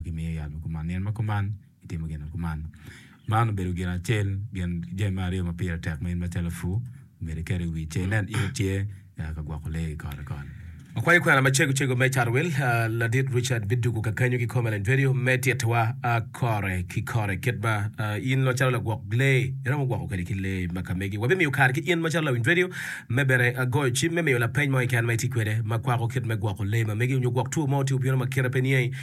Gimiyo yat ma kuman, nino ma kuman, gitimo gin ma kuman. Man obedo gin acel, gin ki jami me aryo ma pire tek ma in macalo apur myero iket i wi ce inen in itye ka gwoko lee i kore koni. Akwayo kwena macego cego me Carwel, Ladit Richard bidwogo kakenyo kikome lany bedo me titowa kore ki kore kit ma in macalo lagwok lee iromo gwoko kwede ki lee ma ka megi. Wabimiyo kare ki in macalo lawiny redio me bene goyo cim me miyo lapeny mo keken ma itye kwede ma kwako kit me gwoko lee ma megi onyo gwok two mo tye obino ma kite pe niangi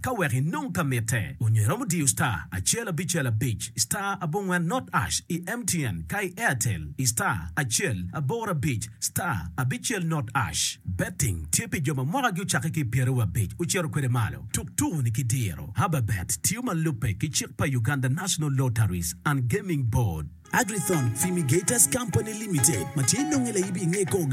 Ka wek inong ka mitte, onyo iromo diyo star acel abicel abic star abongwen not ash i MTN ka i Airtel i star acel aboro abic star abicel not ash. Betting tye pi jo ma mwakagi ocakke ki i pyeraryo abic ocito kwede malo. Tuk tuku-ni ki diro. Hababet tiyo ma lubbe ki cik pa Uganda National Lotteries and Gaming Board. Agrithon Fimigators Company Limited ma tye nonge laibi i nge kor gang.